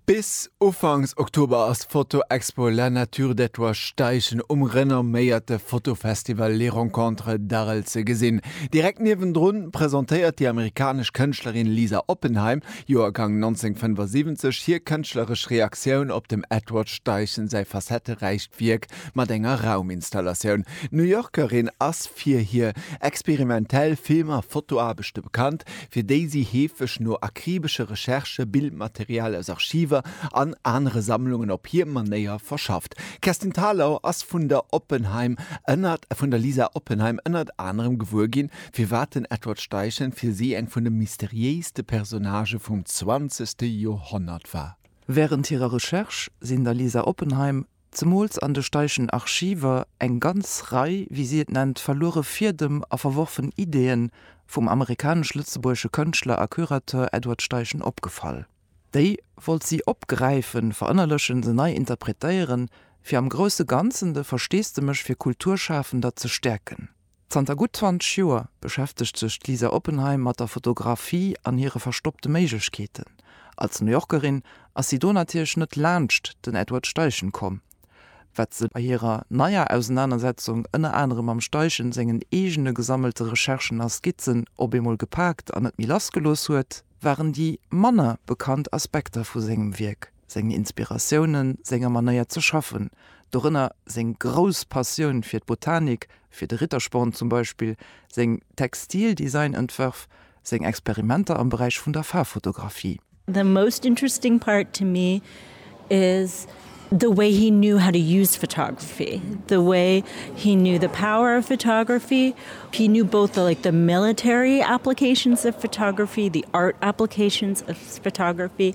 Bis ufanks Oktober ass d'Foto-Expo La Nature d'Ettelbréck-Steichen um renomméierte Fotofestival Les Rencontres d'Arel ze gesinn. Direkt niewendrun presentéiert déi amerikanesch Kënschtlerin Lisa Oppenheim, Joergang 1975, hir kënschtleresch Reaktioun op dem Edward Steichen säi facetteräicht Wierk mat enger Rauminstallatioun. D'New Yorkerin ass fir hir experimentell Film a Fotoaarbechte bekannt. fir déi si heefeg no akribesche Recherchë Bildmaterial aus Archiver an anere Sammlungen op hir Manéier verschafft. D'Kerstin Thalau ass vun der Oppenheim ënnert vun der Lisa Oppenheim ënnert anerem gewuer ginn, firwat den Edward Steichen fir si eng vun de mysteriéiste Personnagë vum zwanzegste Joerhonnert war. Wärend hirer Recherche sinn der Lisa Oppenheim zemools an de Steichen Archiver, eng ganz Rei, wéi si et nennt, verluere Fiedem a verworfen Ideeën vum amerikanesch-lëtzebuergesche Kënschtler a Curateur Edward Steichen opgefall. Déi wollt si opgräifen, verënnerlechen, se nei interpretéieren, fir am grousse Ganzen de Versteesdemech fir Kulturschafender ze stäerken. Zanter gutt 20 Joer beschäftegt sech d'Lisa Oppenheim mat der Fotografie an hire verstoppte Méiglechkeeten. Als New Yorkerin ass si do natierlech net laanscht den Edward Steichen komm. Wat se bei hirer neier Ausenanersetzung ënner anerem mam Steichen sengen eegene gesammelte Recherchen a Skizzen op eemol gepaakt an net méi lassgelooss huet, waren déi manner bekannt Aspekter vu sengem Wierk. seng Inspiratiounen, senger Manéier ze schaffen, dorënner seng grouss Passioun fir d'Botanik, fir de Rittersporn zum Beispill, seng Textildesign-Entwërf, seng Experimenter am Beräich vun der Faarffotografie. The most interesting part to me is the way he knew how to use photography, the way he knew the power of photography, he knew both the like the military applications of photography, the art applications of photography,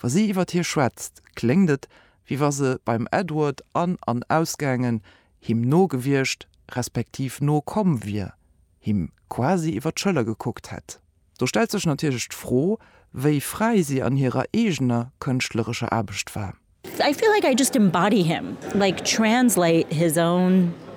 Wa si iwwer hie schwätzt, kléngt et, wéi wa se beim Edward an an ausgaangen, him no gewiescht, respektiv no komm wier, him quasi iwwer d'Schëller gekuckt hätt. Do stellt sech natierlech d'Fro, wéi fräi si an hirer eegener kënschtlerescher Aarbecht war. I feel like I just embody him, like translate his own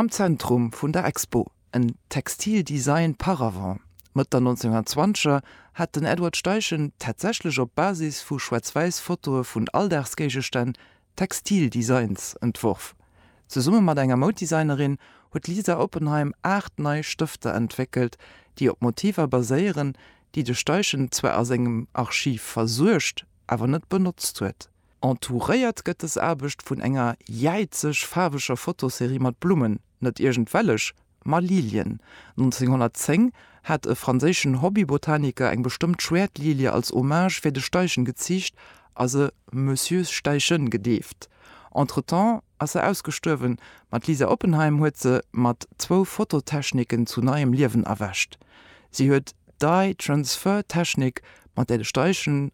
Am Zentrum vun der Expo, en Textile Design par avant. Mëtt der 1920er hat den Edward Steichen tatsächlech op Basis vu schwaarz-wäiss Fotoe vun Alldagsgéigestänn Textile Designs entworf. Zesumme mat enger Mouddesignerin huet d'Lisa Oppenheim aacht nei Stëfter entwéckelt, déi op Motiver baséieren, déi de Steichen zwar a sengem Archiv versuergt, awer net benotzt huet. Entouréiert gëtt des Aarbecht vun enger jäizeg faarweger Fotoserie mat Blummen, net iergend welleg, ma Lilien. 1910 hat e franséischen Hobbybotaniker eng bestëmmt Schwäertlilie als Hommage fir de Steichen geziicht a se Monsieur Steichen gedeeft. Entretemps ass se ausgestuerwen, ma d'Lisa Oppenheim huet se mat zwou Fototechniken zu neiem Liewen erwächt. Si huet d'Dye-Transfer-Technik, mat där de Steichen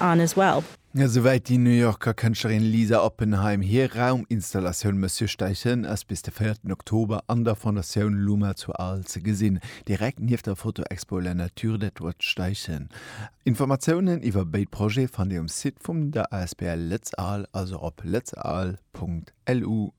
on as well. Esouwäit déi New Yorker Kënschtlerin Lisa Oppenheim. Hir Rauminstallatioun Monsieur Steichen ass bis de véierten Oktober an der Fondatioun Luma zu Arles ze gesinn, direkt nieft der Fotoexpo La nature d'Edward Steichen. Informatiounen iwwer béid Projete fannt Dir um Site vum der asbl Lëtz Arles, also op lëtzarles.lu.